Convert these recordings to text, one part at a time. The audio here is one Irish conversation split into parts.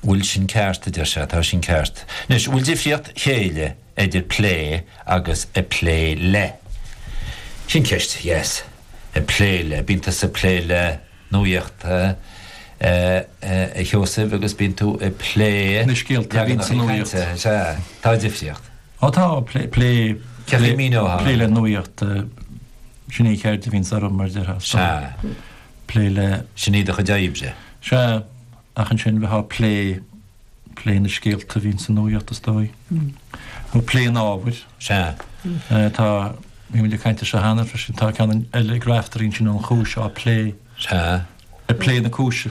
bhfuil sin ceart, a deir sé, tá sin ceart. Anois, an bhfuil difríocht chéille idir plé agus ag plé le? Sin ceist, yes. Ag plé le, bíonn tusa ag plé le nuaíochta, a Sheosaimh, agus bíonn tú ag plé le scéalta, a bhíonn sa nuaíocht. Sea, tá difríocht. Ó tá, plé, plé, plé le nuaíocht, sin é an cheird a bhíonns orm mar a deir. Sea. plé le. Sin é do chuid oibre. Sea, ach ansin bheith á plé, plé na scéalta a bhíonn sa nuaíocht is dóigh, nó plé an ábhair. Sea. Tá, bhí mé ag caint air seo cheana freisin, tá ceann eile ag Raiftearaí ansin an chúis á plé. Sea. Ag plé na cúise.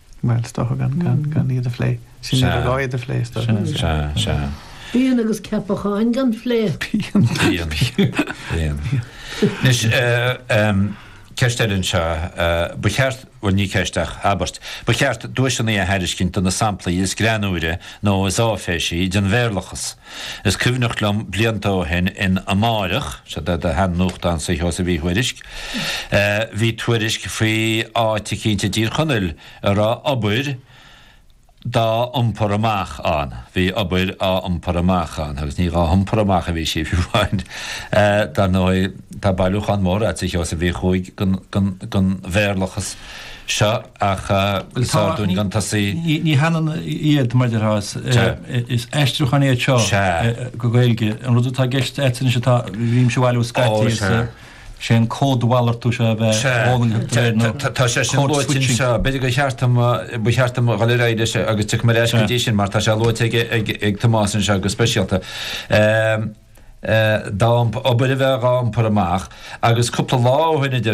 Bhuel, is dócha gan iad a phlé. Sin iad a gá iad a phlé, is dócha. Sin é, sea, sea. Pian agus ceapacháin gan phlé. Pian. Pian. Pian. Anois, ceist eile anseo. Ba cheart, bhuel, ní ceist ach abairt, ba cheart duaiseanna a thairiscint do na samplaí is greannúire nó is áiféisí den Bhéarlachas. Is cuimhneach liom, blianta ó shin, in Amárach, seo é an sean-nuachtán sular thosaigh, bhí tuairisc, Bhí tuairisc faoi áit eicínt i dTír Chonaill a raibh obair dá iompar amach ann. Bhí obair á iompar amach ann agus ní dhá hiompar amach a bhí sí fiú amháin. Dar ndóigh tá bailiúchán mór agat a Sheosaimh, a mhic ó, den Bhéarlachas seo ach is fearr dúinn gan tosaí. Ní hionann iad mar a déarfá, is aistriúcháin iad seo go Gaeilge. An rud atá i gceist agat anois atá, bhímse a bhailiú scaití is. Sé an códmhalartú seo a bheith fhulaingthe de réir na. Tá sé sin luaite anseo. B'fhéidir gur cheart dom, ba cheart dom dhul ar aghaidh leis agus tiocfaidh mé ar ais go dtí sin mar tá sé luaite ag Tomás anseo go speisialta. Dá iompar, obair a bheith dhá iompar amach agus cúpla lá ó shoin idir